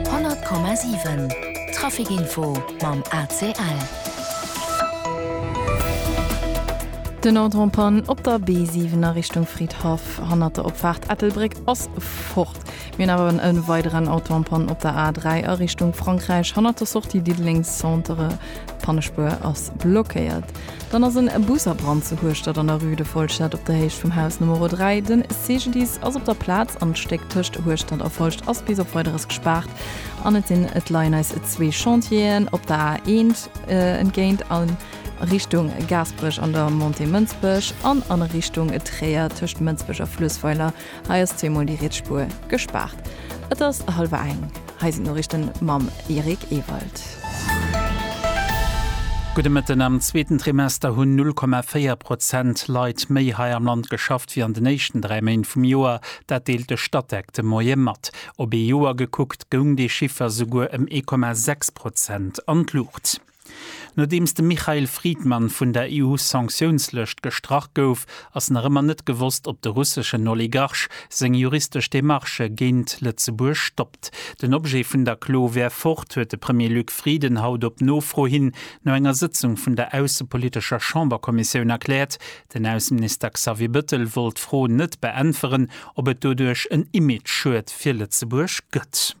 100,7 Trafic Info mam ACL. Den Ordre en panne op der B7 a Richtung Fridhaff hannert der Opfaart Ettelbréck ass fort. Mir hunn awer en weideren Auto en panne op der A3 a Richtung Frankräich hannert der Sortie Diddeleng Centre. D'Pannespuer ass blockéiert. Dann ass en Bus a Brand zu Hueschtert an der Rue de Folscheed op der Héicht vum Haus Numero 3. Den CGDIS ass op der Plaz an d'Stéck tëscht Hueschtert a Folscht ass bis op Weideres gespaart an et sinn et leien eis zwee Chantieren op der A1 entgéint a Richtung Gaasperech an der Montée Mënsbech an a Richtung Tréier tëscht Mënsbech a Fluessweiler Hei ass zweemol déi riets Spuer gespaart. Et ass hallwer eng. Hei sinn d'Noriichten mam Eric Ewald. Gudde Mëtten. Am zweeten Trimester hunn 0,4 Prozent Leit méi hei am Land geschafft wéi an den éischten dräi Méint vum Joer. Dat deelt de Statec de Moie mat. Op ee Joer gekuckt goung dee Chiffer souguer ëm 1,6 Prozent an d'Luucht. Nodeems de Mikhail Fridman vun der EU-Sanktiounslëscht gestrach gouf, ass nach ëmmer net gewosst, ob de russeschen Oligarch seng juristesch Demarchë géint Lëtzebuerg stoppt. Den Objet vun der Klo wär fort, huet de Premier Luc Frieden haut op Nofro hin no enger Sëtzung vun der aussepolitescher Chamberkommissioun erkläert. Den Ausseminister Xavier Bëttel wollt d'Fro net beäntweren, ob et doduerch en Image-Schued fir Lëtzebuerg gëtt.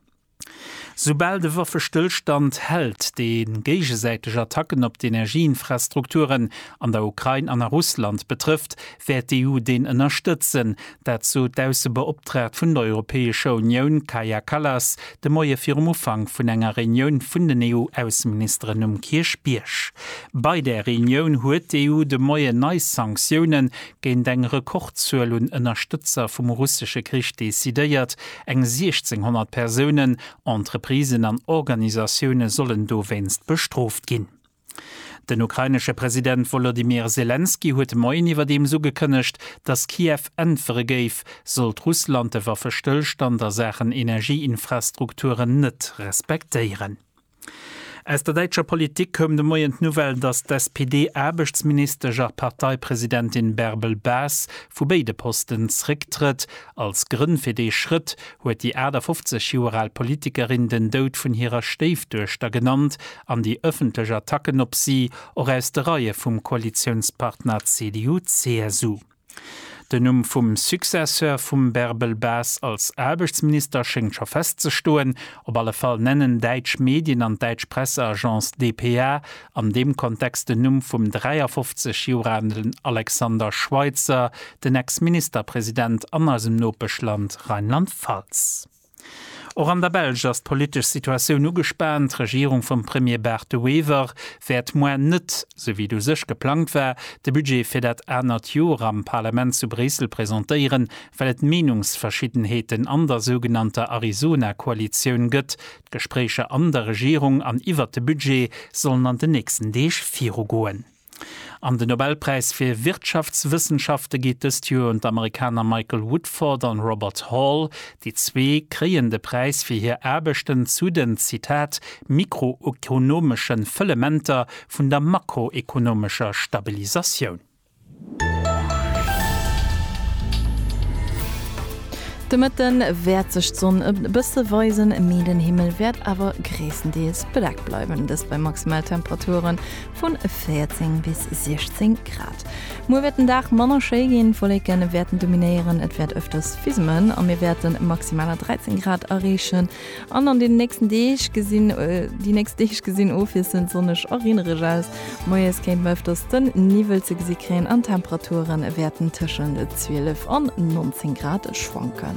Soubal de Waffestëllstand hält, dee géigesäiteg Attacken op d'Energieinfrastrukturen an der Ukrain an a Russland betrëfft, wäert d'EU deen ënnerstëtzen. Dat sot d'Aussebeoptraagt vun der Europäescher Unioun Kaja Kallas de Moie virum Ufank vun enger Reunioun vun den EU-Ausseministeren um Kierchbierg. Bei där Reunioun huet d'EU de Moien nei Sanktioune géint eng Rekordzuel un Ënnerstëtzer vum russesche Krich decidéiert, eng 1.600 Persounen, Entreprisen an Organisatioune sollen dowéinst bestrooft ginn. Den ukrainesche President Wolodymyr Selenskyj huet de Moien iwwerdeems ugekënnegt, datt Kiew äntwere géif, sollt Russland de Waffestëllstand a Saachen Energieinfrastrukturen net respektéieren. Aus der däitscher Politik koum de Moien d'Nouvelle, datt d'SPD-Aarbechtsministesch a Parteipresidentin Bärbel Bas vu béide Posten zrécktrëtt. Als Grënn fir dee Schrëtt huet déi 58 Joer al Politikerin den Doud vun hirer Stéifduechter genannt an déi ëffentlech Attacken op si och aus de Reie vum Koalitiounspartner CDU-CSU. Den Numm vum Successeur vum Bärbel Bas als Aarbechtsminister schéngt scho festzestoen. Op alle Fall nennen däitsch Medien an d'däitsch Presseagence dpa an deem Kontext den Numm vum 53 Joer alen Alexander Schweitzer, den Ex-Ministerpresident an eisem Nopeschland Rheinland-Pfalz. Och an der Belsch ass d'politesch Situatioun ugespaant. D'Regierung vum Premier Bart De Wever wäert moar net, sou wéi et u sech geplangt war, de Budget fir dat anert Joer am Parlament zu Bréissel presentéieren, well et Meenungsverschiddenheeten an der sougenannter Arizona-Koalitioun gëtt. D'Gespréicher an der Regierung an iwwert de Budget sollen an den nächsten Deeg virugoen. An den Nobelpräis fir Wirtschaftswëssenschafte geet dëst Joer un d'Amerikaner Michael Woodford an Robert Hall. Déi zwee kréien de Präis fir hir Aarbechten zu den, Zitat, mikroekonomesche Fëllementer vun der makroekonomescher Stabilisatioun. De Mëtte wäert sech d'Sonn e bësse weisen, mee den Himmel wäert awer gréisstendeels bedeckt bleiwen, dëst bei Maximaltemperature vun 14 bis 16 Grad. Muer wäert den Dag manner schéi ginn, Wolleke wäerten dominéieren, et wäert ëfters fismen a mir wäerte maximaler 13 Grad erreechen. An an deenen nächsten Deeg gesinn déi nächst Deeg gesinn ofwiesselnd sonneg a reenereg aus. Moies kéinte mer ëfters den Niwwel ze gesi kréien an d'Temperature wäerten tëschent 12 an 19 Grad schwanken.